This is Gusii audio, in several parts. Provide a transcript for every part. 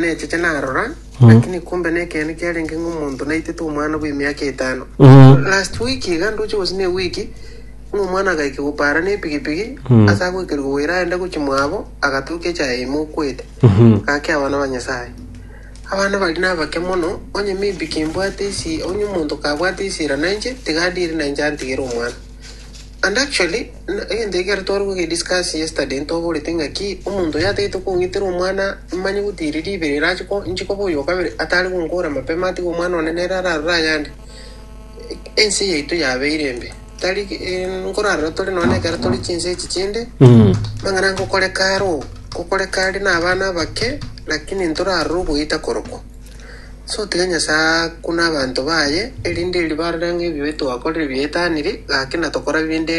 Naecheche narora, lakini kumbe nekeene kiarenge ng'a omonto naitete omwana bw'emiaka etano. Last week iga ndoche gose ne ewiki, ng'a omwana agaika gopara ne epigipigi ase agoikerwa goira aende gochia mwabo, agatoka echaye ime okwete. Gaki abana ba Nyasaye. Abana baria nabake mono, onye maybe kimbwate esi, onye omonto kabwate esira nainche, tiga adiire nainche antigere omwana. And actually, egento eke ekero tware goge discuss yesterday ntoborete ng'a ki omonto oyo atagete kong'itera omwana manye gutiri ribere erache ko inche koba oyo okabere atare gonkora mapema atige omwana one nere ararore ayande. Ense yaito yabeire embe tari nkorarora tore nonya na ekero tore chinse echi chinde amang'ana ngokoreka are oo, ngokoreka are na abana abake lakini ntorarora ogoita korokwa. Sotiga Nyasae aa kune abanto baye, erinde erio barore ng'a ebibe twakorire biaetanire, gaki na tokora binde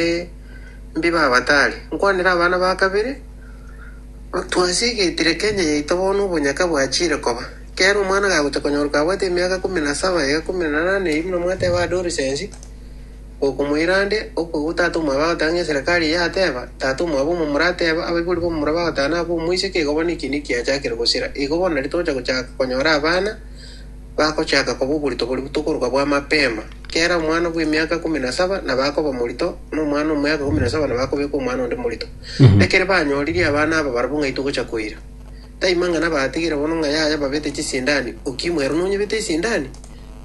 mbi babatare. Nkwanere abana ba kabere, Twasigetire Kenya yaito bono obonyaka bwachiire koba. Kera omwana gagocha konyoruka abwate emiaka ikomi na saba, ega ikomi na nane, erio buna mwateba adolescensi, Gokomoira ande, okoigwa tata omwabo agoteba ng'a eserekari eye yateba, tata omwabo omo morateba, abaibori b'omomura bagoteba nabo omoiseke, igo bono ekiina ekiachakire gosira. Igo bono nari togocha gochaka konyora abana bagochaka koba oborito boria tokoroka bwa mapema. Kera omwana bw'emiaka ikomi na saba nabo akoba morito, na omwana omiaka ikomi na saba nabo akobekwa omwana onde morito. Ekero banyoririe abana aba barabwo ng'ai togocha koira? Taimang'ana batigire bono ng'a yaya babete chisindani, Okimo ero nonyebete esindani?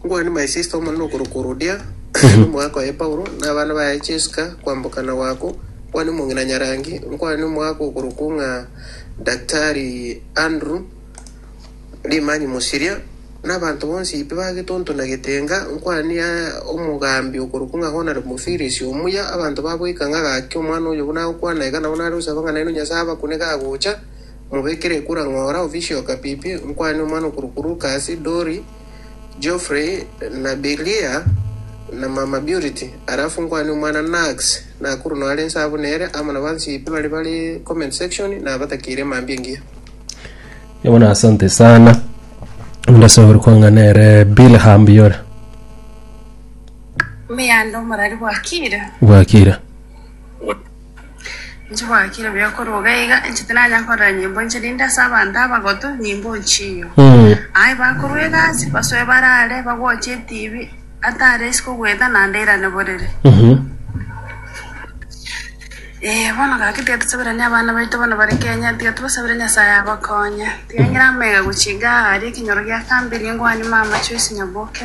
Ngwane Maesista Omonene okorokwa Rodia, aye nomoaka oye Paulo, na abana baye chesika kwamboka na Gwako, ngwane omong'ina Nyarangi, ngwane omoaka okorokwa ng'a Daktari Andrew, Rimanyi Mosiria, na abanto bonsi pi ba getonto na getenga, ngwane omogambi okorokwa ng'a Honore Mofirisi omuya, abanto baboika ng'a gaki omwana oyo buna agokwana iga nabo nare gosaba ng'a naino Nyasae abakune gagocha, mobekere ekura ng'ora, ofisio Kapipi, ngwane omwana okorokwa Lukasi, Dori, Geoffrey na Bilia na mama Purity alafu nkwane omwana Nax Nakuru noare inse abwo nere amo na bansi bare bare comment section nabatakire mambia engiya. Nigo bono asante sana onde ase ore kwang'a nere bilham biyore Meyanda omorari bwakire. bwakire Nchigwakire buya korwa iga iga, inche tinanya korera nyimbo inche rinde ase abanto abagotu nyimbo nchiyo. Aye bakorwa egasi, basoe barare, bagoche etibi, atare isiko ogweta naende airane borere. Ee, bono gaki tiga tosaberanie abana baito bono bare Kenya, tiga tobasabere Nyasae abakonye. Tiga ngire amaiga gochia igaa aria ekenyoro gia kambere, ngwanima mama Joyce Nyaboke.